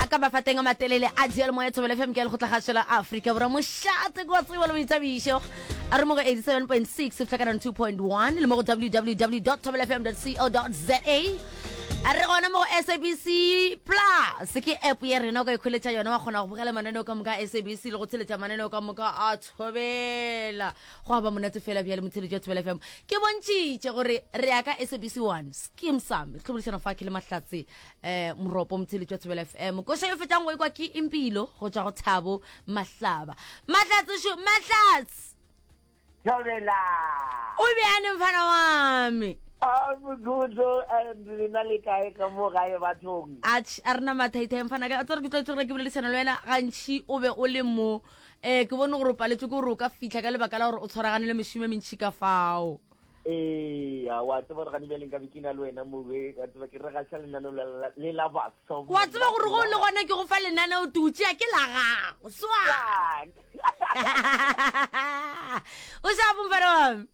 a ka mafa teng a matelele a jea le moya thobele fm ke le go tla gašela afrika borwa mošate kwa tsebo le boithabišo a re mo go 87.6 go fihla 2.1 le mo go www thobelefm co za a re gona mo go sabc plus ke app ya rena o ka ikholetša yona wa kgona go bogela mananeo ka moka a sabc le go theletša mananeo ka moka a thobela go aba monate fela bjale motheletši jwa thobela fm ke bontšitše gore re ya ka sabc one skim sam tlhobodišana fa ke le mahlatse um moropo motheletši jwa thobela fm koša yo fetang go ekwa ke impilo go tswa go thabo mahlaba mahlatse šo mahlatse thobela o bjane mfana wame Abugudo and rena le kae ka mo gae bathong. Ach a rena mathaithae mfana ka tsere ke tlo tsere ke boledisana le wena gantši o be o le mo ee ke bone gore o paletšwe ke gore o ka fitlha ka lebaka la gore o tshwaragane le mešome mentšhi ka fao ee a wa tseba gore gane bjaleng ka be ke na le wena moe ka tseba ke re ga sa lenaneo le la baso wa tseba gore go le gona ke go fa lenaneo tutsea ke la gago swa o sa bompere wame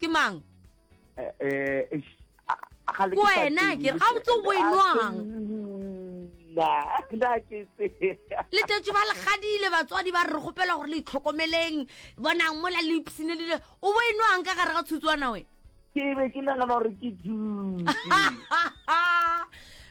ke mang ko wena ke ga botse o enwang letetso ba legadile batswadi ba re re gopela gore le itlhokomeleng bonang mola le ipsene le o bo enwang ka gare ga tshutsoana wena ke be ke nagana gore ke dutse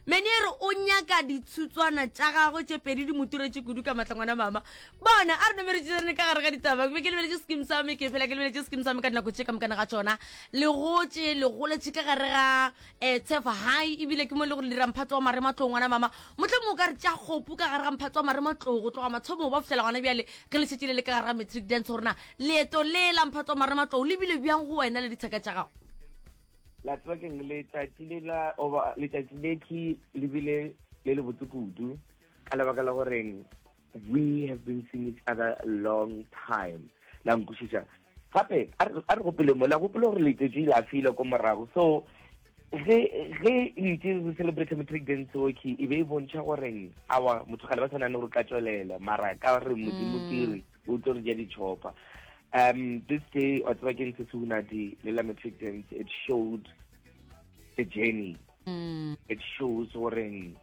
mene re o nyaka ditshutshwana tša gagwe tše pedi di moturetse kudu ka matlangwana mama Bona, a re no be re tšerene ka gare ga ditaba, ke be ke lebeletše skim sa me, ke phela ke lebeletše skim sa me ka dinako tše ka mokana ga tšona. Le gotše, le goletše ka gare ga um Tshefa High, ebile ke mo e le gore le dira mphato wa marematlou ngwana mama. Mohlomong o ka re tša kgopu ka gare ga mphato wa marematlou go tloga matshomong ba go fihlela gona bjale ge le šetše le le ka gare ga matric dance, gore na leeto le la mphato wa marematlou le bile bjang go wena le dithaka tša gago. La tseba keng, letšatši le la oba letšatši le ke le bile le le botse kudu ka lebaka la goreng We have been seeing each other long time. La nkwešiša. Gape, a re gopele mo, la gopele gore letšatši la file ko morago. So, ge ge itse re celebrate matric dance oki e be e bontšha goreng awa motho gale ba tshwana le gore ka tswelela mara ka re modimo mm. kere o tlo re ja ditšhopa um this day wa tseba ke ntse seunadi le la matric dance it showed the journey mm. it shows goreng